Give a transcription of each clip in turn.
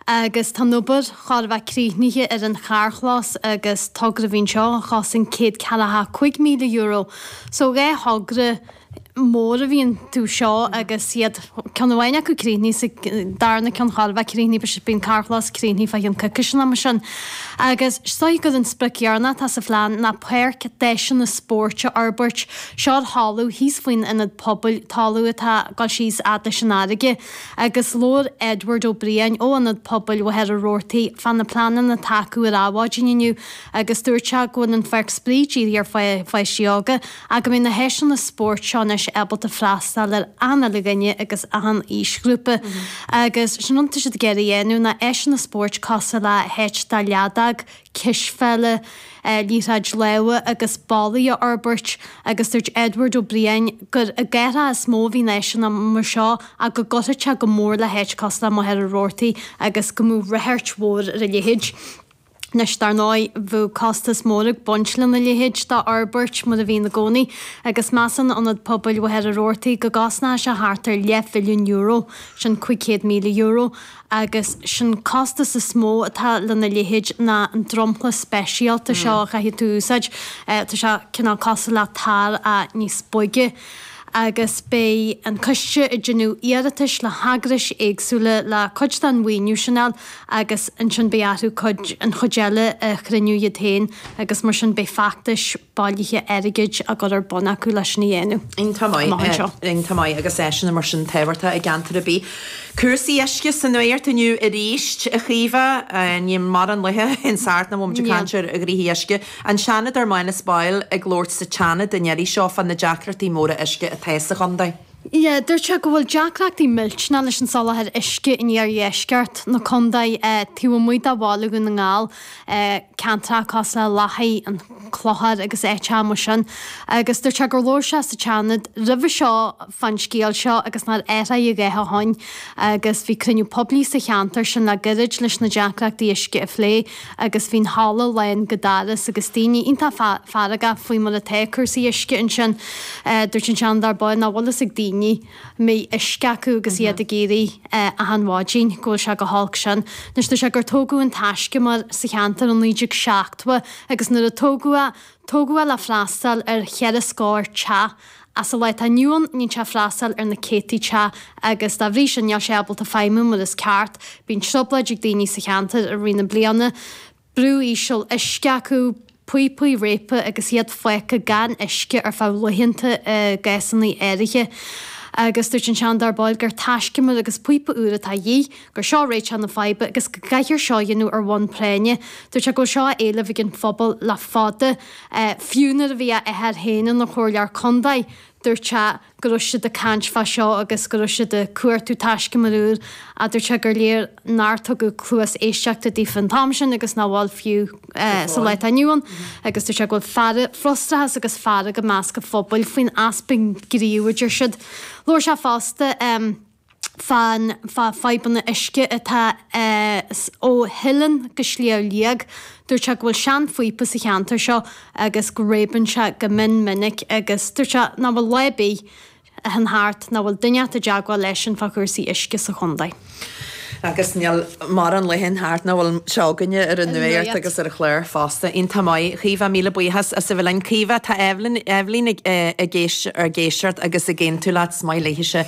agus tá an obair chóir a bheith críochnaithe ar an charrchlós agus togra a bhí ann seo a chosain céad ceathracha a cúig míle euro. So dhá thogra mór a bhí iontu seo agus tá ceann amháin acu críochnaithe is an darna ceann chóir a bheith críochnaithe beidh an carrchlós críochnaithe faoi cheann coicíse nó mar sin agus is dóiche gur an sprioc dheireanach atá sa phlean ná páirc d'áiseanna spóirt a fhorbairt seo ar thalamh thíos faoin Ionad Pobail, talamh atá ag dul síos fhad leis an fharraige. agus labhair Edward Ó Briain ó Ionad Pobail Mhachaire Rabhartaigh fá na pleananna atá acu ar Adhmhaidin inniu agus dúirt sé go bhfuil an Pháirc Spraoi dírithe ar pháistí óga ach go mbeidh na háiseanna spóirt seo anois ábalta freastáil ar achan uile dhuine agus achan aoisghrúpa agus is é an rud atá siad ag iarraidh a dhéanamh ná áiseanna spóirt cosúil le háit do leadóg, cispheile, liathróid láimhe agus bollaí a fhorbairt agus dúirt Edward Ó Briain gur i gcathracha is mó a bhíonn áiseanna mar seo ach go gcuirfeadh sé go mór le háit cosúil le Machaire Rabhartaigh agus go mbeadh rachairt mhór ar a leithéid. Anois, dar ndóigh, bheadh costas mór ag baint lena leithéid d'fhorbairt, mar a bhíonn i gcónaí, agus measann Ionad Pobail Mhachaire Rabhartaigh go gcosnódh sé thart ar leathmhilliún euro, sin €500,000, agus is é an costas is mó atá lena leithéid ná an dromchla speisialta seo a chaithfidh tú úsáid, tá sé cineál cosúil le tar ach níos boige, agus beidh an coiste ag déanamh iarratais le heagrais éagsúla le cuid den mhaoiniú sin a fháil agus ansin beidh orthu cuid, an chuid eile a chruinniú iad féin agus mar sin beidh feachtais bailithe airgid á gcur ar bun acu leis sin a dhéanamh. Iontach maith, iontach maith, áiseanna mar sin tábhachtach i gceantar ar bith. Cúrsaí uisce sa nuacht inniu arís, a Chaoimhe. Níl mórán laetha a théann thart nach bhfuil muid ag caint ar ghnoithe uisce. An Seanadóir Manus Boyle ag labhairt sa tSeanad an iarraidh seo fá na deacrachtaí móra uisce atá sa chontae. Dúirt sé go bhfuil deacrachtaí millteanach leis an soláthar uisce in iardheisceart na contae, taobh amuigh de Bhaile Dhún na nGall. ceantracha cosúil le Lathaigh, an Clochar agus áiteacha mar sin agus dúirt sé gur labhair sé sa tSeanad roimhe seo fán scéal seo agus nár athraigh a dhath ó shin agus bhí cruinniú poiblí sa cheantar sin le gairid leis na deacrachtaí uisce a phlé agus bhí an halla lán go doras agus daoine iontach feargach faoi mar atá cúrsaí uisce ansin. Dúirt an Seanadóir Boyle nach bhfuil a fhios ag daoine. mbeidh uisce acu agus iad ag éirí achan mhaidin, go bhfuil sé chomh holc sin. Anois, dúirt sé gur tógadh an taiscumar sa cheantar i naoi déag seachtó agus nuair a tógadh é, tógadh é le freastáil ar cheithre scór teach ach sa lá atá inniu ann, tá sé ag freastáil ar na céadtaí teach agus dá bhrí sin, níl sé ábalta feidhmiú mar is ceart. Bíonn trioblóid ag daoine sa cheantar i rith na bliana. brú íseal uisce acu, píopaí réabtha agus iad fágtha gan uisce ar feadh laethanta i gcásanna áirithe. Agus dúirt an Seanadóir Boyle gur taiscumar agus píopa úr atá a dhíth, gur seo réiteach na faidhbe agus go gcaithfear seo a dhéanamh ar bhonn práinne. Dúirt sé go bhfuil seo á éileamh ag an phobal le fada, fiú nuair a bhí a athair féin ina chomhairleoir contae, dúirt sé, go raibh siad ag caint fá seo agus go raibh siad ag cuartú taiscumair úr a dúirt sé gur léir nár tugadh cluas éisteachta daofa an t-am sin agus nach bhfuil fiú sa lá atá inniu ann agus dúirt sé go bhfuil fearg, frustrachas agus fearg i measc an phobail faoin easpa gnímh a deir siad. Labhair sé fosta. fá na fadhbanna uisce atá ó Theileann go Sliabh Liag. Dúirt sé go bhfuil sean-phíopa sa cheantar seo agus go réabann sé go mion minic agus dúirt sé nach bhfuil lá ar bith a théann thart nach bhfuil duine inteacht i dteagmháil leisean fá chúrsaí uisce sa chontae. Agus níl morán lá a théann thart nach bhfuil seo againne ar an nuacht agus ar an chlár fosta. Iontach maith. Caoimhe, míle buíochas as a bheith linn. Caoimhe, tá Eibhlín ag éis ag éisteacht agus ag aontú leat. Is maith léithise.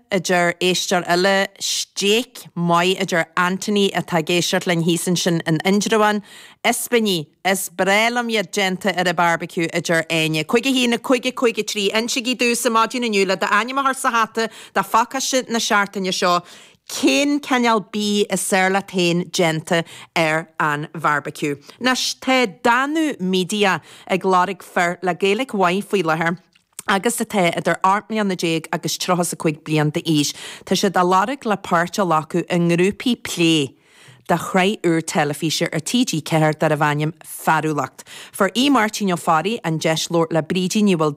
a deir éisteoir eile, Steak maith, a deir Anthony atá ag éisteacht linn thíos ansin in Indreabhán. Ispíní, is breá liom iad déanta ar an bharbecue, a deir Áine. 51553, Insígí domhsa ar maidin inniu le d'ainm a chur sa hata do phacáiste na seachtaine seo cén cineál bídh is fearr leat féin déanta ar an bharbecue. Anois tá Danú Media ag lorg fir le Gaeilge mhaith faoi láthair. agus atá idir 18 mbliana agus 35 bliain d'aois, tá siad á lorg le páirt a ghlacadh i ngrúpaí plé do shraith úr teilifíse ar TG4 darbh ainm 'Fearúlacht'. Fuair Aodh Máirtín Ó Fearraigh an deis labhairt le Brídín Ní Mhaol,